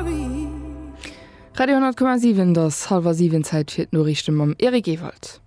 Radio 10,7 et ass hallwer 7, Zäit fir d'Noriichte mam Eric Ewald.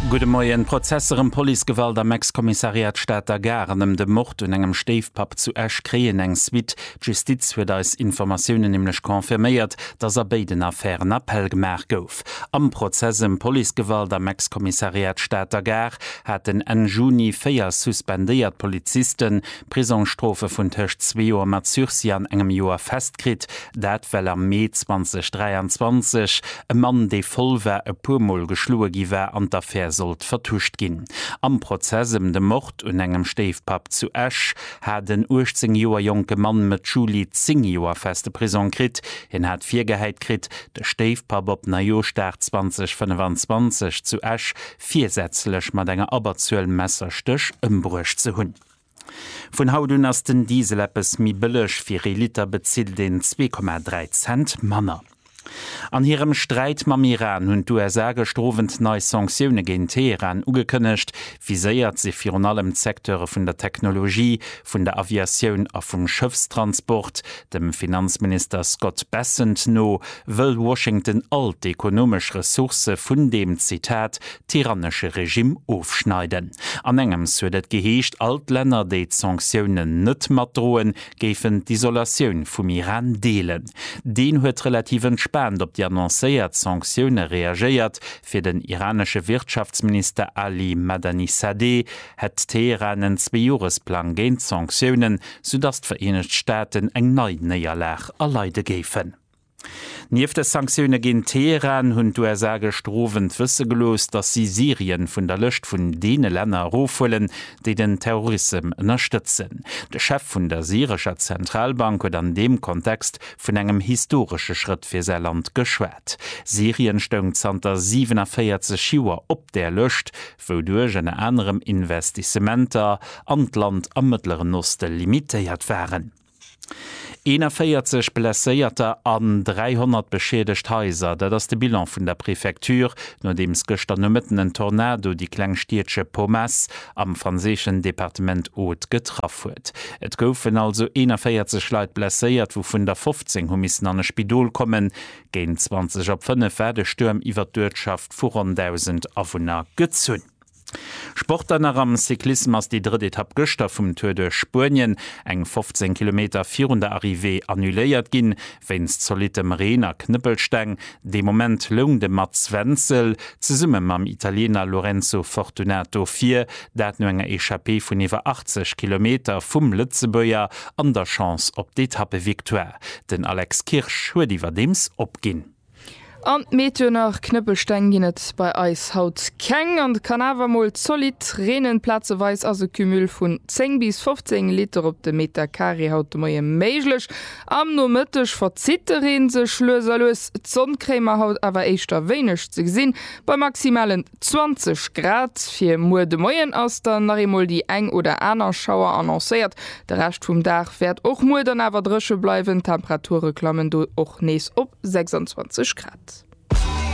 Gudde Moien, Prozesser ëm Policegewalt am Ex-Kommissariat Stater Gare an ëm de Mord un engem Stéifpapp zu Esch kréien eng Suite. D'Justiz huet eis Informatiounen nämlech confirméiert, datt a béiden Affären Appell gemaach gouf. Am Prozess ëm Policegewalt am Ex-Kommissariat Stater Gare haten Enn Juni véier suspendéiert Polizisten, Prisongsstrofe vun tëscht zwee Joer mat Sursis an engem Joer fest kritt. Dat well am Mee 2023 e Mann, dee voll war, e puer Mol geschloe gi war an d'Affär sollt vertuscht ginn. Am Prozess ëm de Mord un engem Stéifpapp zu Esch hat en 18 Joer jonke Mann Mëtt Juli 10 Joer feste Prisong kritt. Hien hat virgehäit kritt, de Stéifpapp op Neijooschdag 2025 zu Esch virsätzlech mat enger Abberzuel Messerstéch ëmbruecht ze hunn. Vun haut un ass den Diesel eppes méi bëlleg, fir ee Liter bezilt een zwee Komma dräi Cent manner. An hirem Sträit mam Iran hunn d'USA gëschter Owend nei Sanktioune géint Teheran ugekënnegt. Viséiert si virun allem d'Secteure vun der Technologie, vun der Aviatioun a vum Schëffstransport. Dem Finanzminister Scott Bessent no wëll Washington all d'ekonomesch Ressourcë vun deem, Zitat, tyrannesche Regimm ofschneiden. An engems huet et geheescht, all d'Länner, déi d'Sanktiounen net matdroen, géifen d'Isolatioun vum Iran deelen. Deen huet relativ entspaant op déi annoncéiert Sanktioune reagéiert. Fir den iranesche Wirtschaftsminister Ali Madanisadeh hätt Teheran en Zweejoeresplang géint d'Sanktiounen, soudatt d'Vereenegt Staaten eng nei Néierlag erleide géifen. Nieft de Sanktioune géint Teheran hunn d'USA gëschter Owend wësse gelooss, datt si Syrien vun der Lëscht vun deene Länner erofhuelen, déi den Terrorissem ënnerstëtzen. De Chef vun der syrescher Zentralbank huet an deem Kontext vun engem historesche Schrëtt fir säi Land geschwat. Syrien stoung zanter 47 Joer op där Lëscht, wouduerch ënner anerem Investissementer an d'Land am Mëttleren Oste limitéiert waren. 41 Blesséierter an 300 beschiedegt Haiser, dat ass de Bilan vun der Prefecture, nodeems gëschter Nomëtten en Tornado déi kleng Stiedche Pomace am franséischen Departement Aude getraff huet. Et goufen also 41 Leit blesséiert, wouvun der 15 hu missen an e Spidol kommen. Géint 20 op 5 war de Stuerm iwwert d'Uertschaft vu ronn 1.000 Awunner gezunn. Sport dann nach am Cyclissem ass déi drëtt Etapp gëschter vum Tour duerch Spuenien eng 15 Kilometer virun der Arrivée annuléiert ginn, wéinst zolittem Reen a Knëppelsteng. De Moment loung de Mats Wenzel zesumme mam Italiener Lorenzo Fortunato vir, dat no enger Echappée vun iwwer 80 Kilometer vum Lëtzebuerger an der Chance op d'Etappevictoire. Den Alex Kirsch huet iwwerdeems opginn. An Meteo nach, Knëppelsteng ginn et bei eis haut keng an et kann awer mol zolidd reenen. Plazeweis ass e Cumul vun 10 bis 15 Liter op de Meter Carré haut de Moie méiglech. Am Nomëtteg verzitt de Reen sech lues a lues, d'Sonn kréie mer haut awer éischter wéineg ze gesinn bei maximalen. 20 Grad. Fir muer de Moien ass dann nach eemol déi eng oder aner Schauer annoncéiert. De Rescht vum Dag wäert och muer dann awer dréche bleiwen, d'Temperature klammen do och nees op 26 Grad.